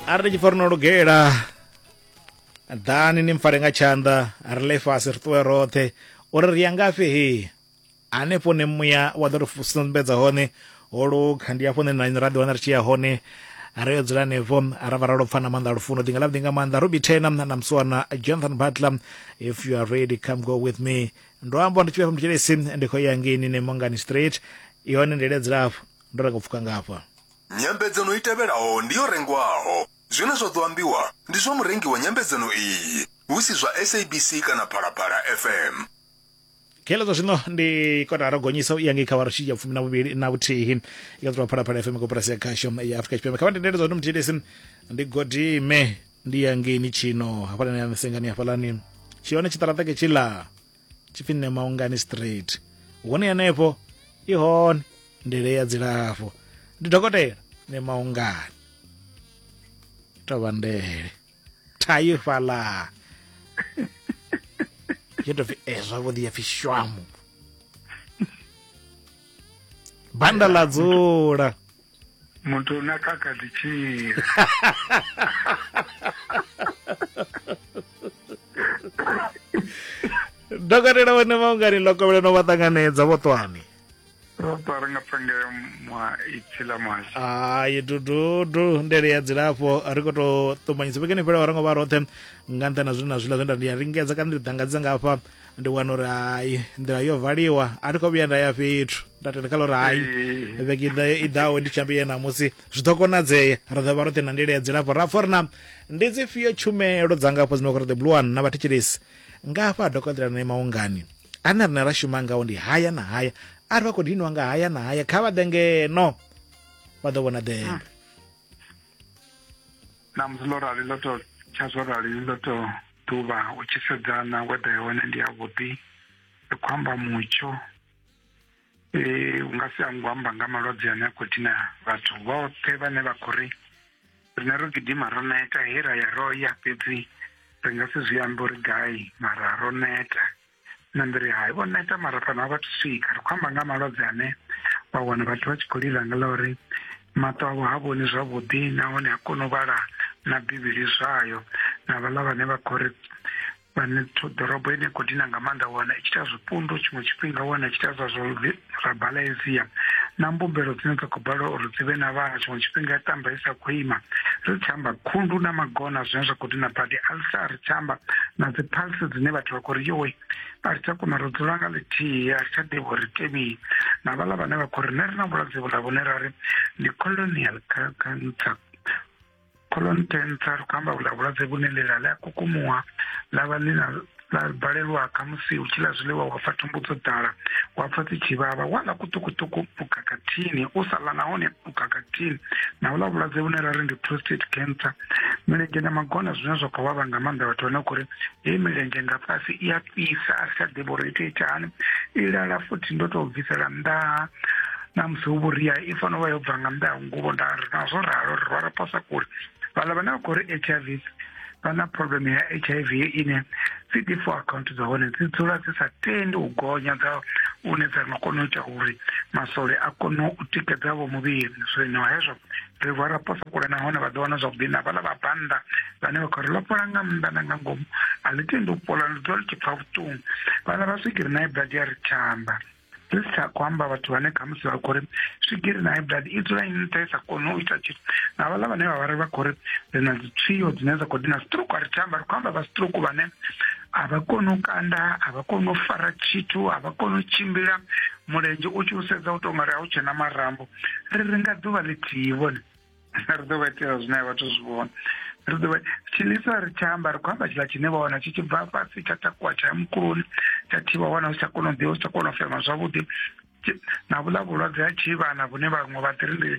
a ri ni tshi pfa ri no lugela ḓani ni mpfare nga tshanḓa ri le fhasi ri ṱuwe roṱhe uri ri ya ngafhi he hanefho ne muya wa ḓo ri sumbedza hone ho lukha ndi afho ne na ra ḓiwana ri tshi ya hone ri yo dzula nevo ra vha ra lopfa na maanḓa lufuno ḓinga ḽa nga maanḓa ruby tena na muswana jonathan butler if you are ready come go with me ndo amba ndi tshi vha muthelesi ndi khou ya ngeni ne mongani street yone ndele dzilafho Ndo ranga u pfuka nga hafha. Nyambedzano i tevhelaho ndi yo rengwaho. Zwine zwa ḓo ambiwa ndi zwa murengi wa nyambedzano iyi, hu si zwa SABC kana Phalaphala FM. Khelo zwa zwino ndi kotara gonyisa u ya ngei kha vha rutshidzi ya fumi na vhuvhili na vhuthihi i katulwa phalaphala fm koporasi ya khasho ya afurika tshipembe kha vha ndendele zwa ndi muthelesi ndi godime ndi ya ngeini tshino hafhalani ya sengani hafhalani tshihone tshiṱaraṱeke tshila tshipfi nṋe maungani straight hone henefho i hone ndele ya dzilafho ndi dokotela nṋe maungani tovha ndele thayi fhala yo tou pfi e eh, zwavhuḓi ya pfi shwamu banda ḽa dzula motho o ne a ka ka ditšhira dokotela vhone maungani ḽo kovhela no vha ṱanganedza vho ṱwani ri nga pfa ngeo mwa ipfi ḽa muhasho hayi dududu ndele ya dzilafho ri khou tou ṱumanyisa vhekeni fhela wa ri ngo vha roṱhe nga nṱhani na zwine na zwiḽa zwe nda ndi a lingedza kana ndi ḓangadzisa nga hafha ndi wana uri hai nḓila yo valiwa a thi khou vhuya nda ya fhethu nda tenda kha ḽa uri hai vhege i ḓaho ndi tshambi ye namusi zwi ḓo konadzea ri ḓo vha roṱhe na ndila ya dzilafho ra pfa uri na ndi dzi fhio tshumelo dza ngafho dzine khou ri the blue one na vhathetshelesi nga hafha dokotela na maungani ane rine ra shuma ngawo ndi haya na haya a ri vha khou diniwa nga haya na haya kha vha ḓe ngeno vha ḓo vhona ḓeya hmm. namusi ḽo rali ḽo to tsha zwo rali ḽo to ḓuvha u tshi sedza na weather ya hone ndi yavhuḓi ri khou amba mutsho eh, u nga si ango amba nga malwadze ane a khou dina vhathu vhoṱhe vhane vha khou ri rine ro gidima ro neta he ra ya ro ya fhedzi ri nga si zwi ambe uri gai mara ro neta na ndi ri hai vho neta mara fhano a vha thu swika ri khou amba nga malwadze ane wa wana vhathu vha tshi khou lila nga ḽa uri maṱo avho ha vhoni zwavhuḓi nahone a kona u vhala na bivhili zwayo na vhaḽa vhane vha khou ri vhane ḓorobo ine khou dina nga maanḓa wana i tshi ita zwipundu tshiṅwe tshifhinga wana i tshi ita zwa zwa ra bala ezia na mbumbelo dzine dza khou balelwa uri dzi vhe na vhana tshiṅwe tshifhinga ya tamba i sa khou ima ri tshi amba khundu na magona zwine zwa khou dina badi alsa ri tshi amba na dzi pulse dzine vhathu vha khou ri yowe a ri tsha kona ro dzula nga ḽithihi a ri tsha ḓivhi uri tevhii na vhaḽa vhane vha khou ri ne ri na vhulwadze vhula vhune ra ri ndi colonial cancer Colon 10 tsa ri khou amba vhula vhulwadze vhune ḽila ḽi a kukumuwa ḽa vha ḽi na ḽa balelwa khamusi u tshi ḽa zwiḽiwa wa pfa thumbu dzo ḓala wa pfa dzi tshi vhavha wa ḽa kuṱukuṱuku u khakhathini u sa ḽa nahone u khakhathini na u ḽa vhulwadze vhune ra ri ndi prostate cancer milenzhe na magona zwine zwa khou vhavha nga maanḓa vhathu vhane khou ri heyi milenzhe nga fhasi i a fhisa a ri tsha ḓivha uri ite ita hani i lala futhi ndo tou bvisela nnḓa na musi hu vhuria i fanela vha yo bva nga nnḓa ya nguvho nda ri na zwo ralo ri rwara posa kule vhaḽa vhane vha khou ri h i v vha na problem ya h i v ine dzi di four account dza hone dzi dzula dzi sa tendi u gonya dza une dza nga kona u ita uri masole a kone u tikedza vho muvhili zwino hezwo ri vha ra posa kule nahone vha ḓo wana zwavhuḓi na vhaḽa vha bannda vhane vha khou ri lopola nga nnḓa na nga ngomu a ḽi tendi u pola ḽi ḓo ḽi tshi pfa vhuṱungu vhaḽa vha swigiri nae badi ya ri tshamba zwi si tsha khou amba vhathu vhane khamusi vha khou ri swigiri na ibdad i dzula ini nṱha i sa koni u ita tshithu na vhaḽa vhane vha vhari vha khou ri ri na dzitswio dzine dza khou dina stroke a ri tshi amba ri khou amba vha stroke vhane a vha koni u kanda a vha koni u fara tshithu a vha koni u tshimbila mulenzhe u tshi u sedza u tou nga ri a u tshena marambo ri ri nga ḓuvha ḽithihi vhone ri ḓo vha itela zwine a vhathu zwi vhona ri ḓo vha tshiḽisa ri tsha amba ri khou amba tshiḽa tshine vha wana tshi tshi bva fhasi tsha takuwa tsha ya mukuloni tsha thivha wana u si tsha kona u ḓivha u si tsha kona u fema zwavhuḓi na vhuḽa vhulwadze ha tshivhana vhune vhaṅwe vha ḓiri ndi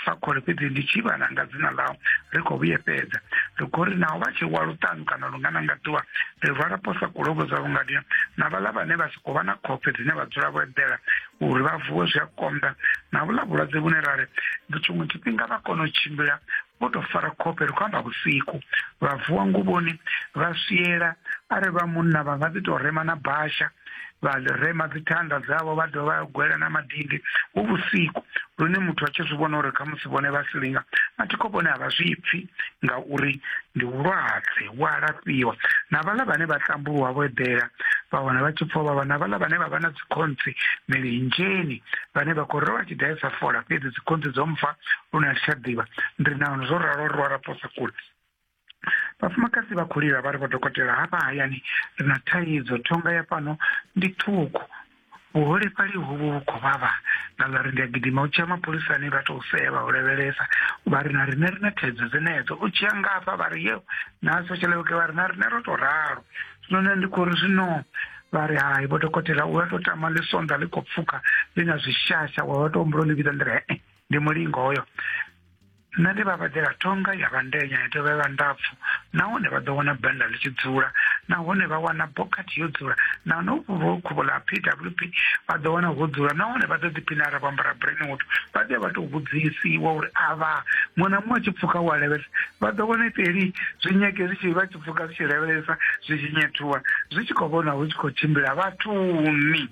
fakhole fhedzi ndi tshivhana nga dzina ḽau ri khou vhuyefhedza ri khou ri naho vha tshi wa luṱanu kana lungana nga ḓuvha ri rwala posa kulovho dza vhungadia na vhaḽa vhane vha si khou vha na khofhe dzine vha dzula vho eḓela uri vha vuwe zwi a konḓa na vhuḽa vhulwadze vhune ra ri tshiṅwe tshifhinga vha kona u tshimbila vho tou fara khofhe ri khou amba vhusiku vha vuwa nguvhoni vha swiela a ri vha munna vha nga ḓi tou rema na basha vha ḽi rema dzithanda dzavho vha dovha vha gwela na madindi hu vhusiku lune muthu a tshi zwi vhona uri khamusi vhone vha silinga mathikho vhone a vha zwi pfhi ngauri ndi vhulwadze vhu a lafhiwa na vhaḽa vhane vha tambuluwa vho eḓela vha wana vha tshi pfha vha vha na vhaḽa vhane vha vha na dzikhonthi milinzheni vhane vha khou ri vha tshi ḓa sa fola fhedzi dzikhonthi dzo mfa lune a si tsha ḓivha ndi nano zwo ralo ri wara posa kule vhafumakadzi vha khou lila vha ri vho dokotela hafha hayani ri na thaidzo thonga ya fhano ndi ṱhukhu vhuholefhali hovhu vhu khou vhavha nga ḽa ri ndi a gidima u tshia mapholisani vha tou sea vha u lavhelesa vha ri na riṋe ri na thaidzo dzenedzo u tshia ngafha vha ri yeo na social worker vha ri na riṋe ro tou ralo none ndi khou ri zwino vha ri hai vho dokotela u a tou tama ḽi sonda ḽi khou pfuka ḽi na zwishasha wa vha tou humbula ḽi vhidza nḓila e ndi mulingo hoyo nṋe ndi vha vhadela thonga ya vhandenya ya dovha ya vha ndapfu nahone vha ḓo wana banda ḽi tshi dzula nahone vha wana bokhathi yo dzula nahone uvho khuvho ḽa p w p vha ḓo wana ho dzula nahone vha ḓo ḓiphina ara vho ambara brainwood vha ḓe vha tou vhudzisiwa uri avha muṅwe na muṅwe a tshi pfuka wa levhesa vha ḓo wana ipeli zwi nyage zwi tshi vha pfuka zwi tshi lavhelesa zwi tshi nyethuwa zwi tshi khou vhona hu tshi khou tshimbila vhathuni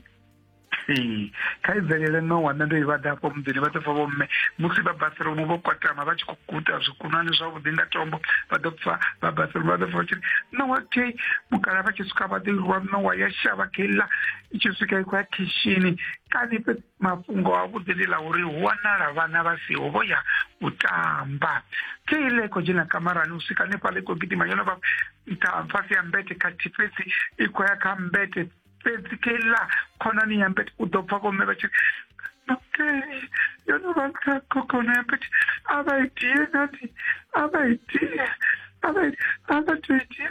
ee kha i bvelele no wana ndo i vhaḓa afho muḓini vha ḓo pfa vhomme musi vha bathroom vho kwatama vha tshi khou guta zwikunani zwavhuḓi nga tombo vha ḓo pfa vha bathroom vha ḓo pfa vha tshi nowa te mukala vha tshi swika vha ḓo irwa nowa ya shavha keiḽa i tshi swika i khou ya khishini kani fhedzi mafhungo a vhuḓi ndi ḽa uri hu wanala vhana vha siho vho ya u tamba ke ile khou dzhena kamarani u swika hanefhaḽa i khou gidima yo no vha nṱha fhasi ya mbete khathihi fhedzi i khou ya kha mbete fhedzi ke iḽa khonani ya mbete u ḓo pfa vhomme vha tshi ke yo no vha nṱha khokhono ya mbete a vha itie nani a vha itie a vha a vha tou itia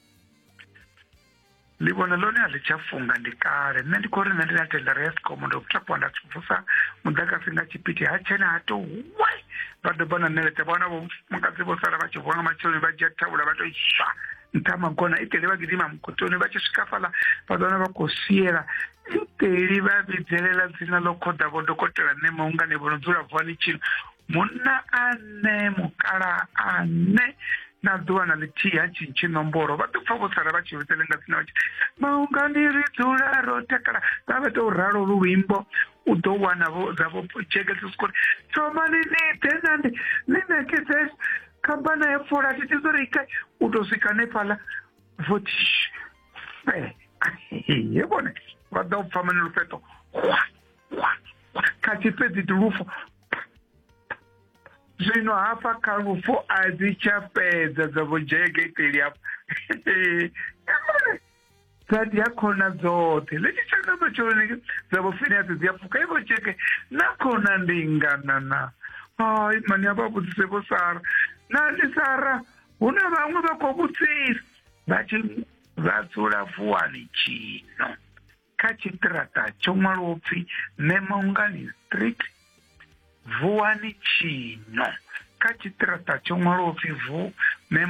ndi vhona ḽone a ḽi tsha funga ndi kale nṋe ndi khou ri nṋe ndi na tendara ya sikomo ndo takuwa nda vusa muḓagasi nga tshipiti ha tshena ha to we vha doba na ṋeledza vhawana vho mufumakadzi vho sala vha tshi vuwa nga matsheloni vha dzhia thavhula vha to iswa nṱha magona iteli vha gidima mukotoni vha tshi swika fhaḽa vha ḓona vha khou siela iteli vha vhidzelela dzina ḽo khoḓa vho dokotela nṋe maungane vho no dzula vuwani tshino munna ane mukala ane na ḓuvha na ḽithihi ha tshintshi nomboro vha ḓo pfa vho sala vha tshi vhusele nga tsina vhatshi maungani ri dzula ro takala vha vha tou ralo lu luimbo u ḓo wana vho dza vho jekese sikori thomani ni ḓe nandi ni ṋekedze khamphana ya fola thi tizo ri kai u tou swika nefhaḽa votish fe ye vhone vha ḓa u pfa mane lufheṱo kwa kwa kha tshifhedzi ndi lufu zwino hafha kha lufu a dzi tsha fhedza dza vho dzhege iteli hafha dza dzi a khona dzoṱhe ḽitshi tshaka matsheloni dza vho finiasi dzi a pfuka ivo tsheke na khona ndi ngana na hai mani a vha vhudzise vho sara na ndi sara hu na vhaṅwe vha khou vhudzisa vha tshi vha dzula vuwani tshino kha tshiṱiraṱa tsho ṅwalwaho pfi memongani street vuwani tshino kha tshiṱiraṱa tsho ṅwalwaho pfi vu mema